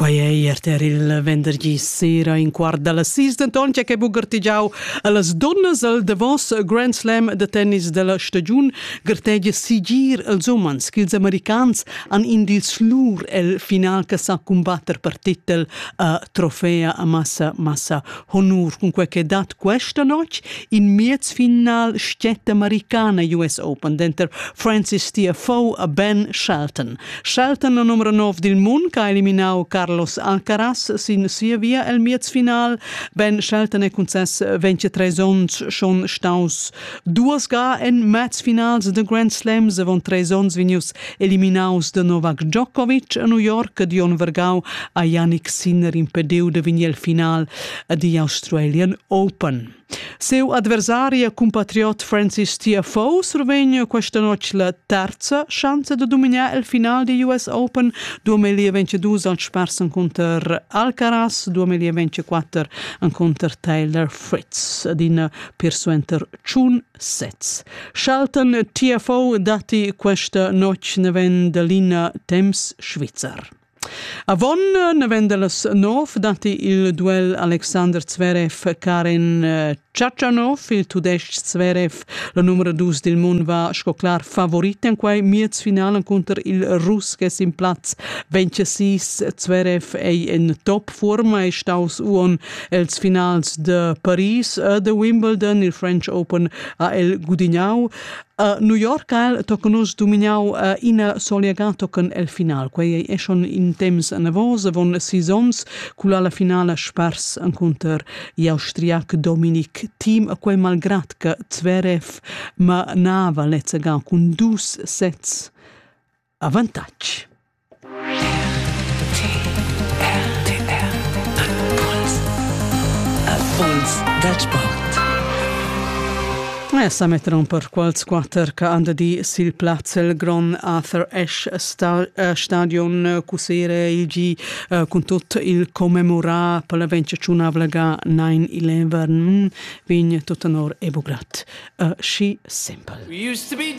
Quei ei erter il vendergi sera in quart dalla sis, denton che bugertigiau allas donnas al davos Grand Slam da tennis della stagiun gertegia sigir els umans ch'ils americans han in dils lur el final che sa cumbatter per titel a trofea a massa massa Honur cunquai che dat questa notg in miez final stgetta americana US Open denter Francis Tiafoe a Ben Shelton. Shelton, la numero 9 dil mund, che ha eliminau Carlos Alcaraz sin sia via el miez final. Ben Shelton è concess 23 onns schon staus duas ga en mezfinals de Grand Slams avon treis onns vegnius eliminaus da Novak Djokovic a New York ed Jon Vergau ha Yannick Sinner impediu da vegnir al final ad the Australian Open. Seu adversari e compatriot Francis Tiafoe survegn questa notte la terza chance de dominar il final di US Open 2022 al Sparsen contro Alcaraz 2024 contro Taylor Fritz ad in persuenter ciun sez. Schalten TFO datti questa notg ne ven dell'ina temps Svizzer. Avon ne ven dellas nov datti il duel Alexander Zverev Karen eh, Tchatchanov, il tudesc Zverev, la numero dus del mondo va sco clar favorit in quei miezfinalen contro il Rus che sin platz 26 Zverev ei in top forma e staus uon Els finals de Paris e de Wimbledon, il French Open, ha el gudignau. Uh, New York al tocan nus dumignau uh, ina soleaga tocan el final. Quei è schon in temps navos, avon sis ons, culla la finala spars encounter l'austriac Dominik Team, a quei malgrat che Zverev manava lezzega cun dus sets Avantatg. Impuls dal sport. E sa metteron per quals quatter che han di sil plaz il Grand Arthur Ash eh, Stadion Cusere il G eh, con tot il commemora per la vincziunabla ga 9-11 vegn tutto nor ebugrat. Uh, eh, she simple. We used to be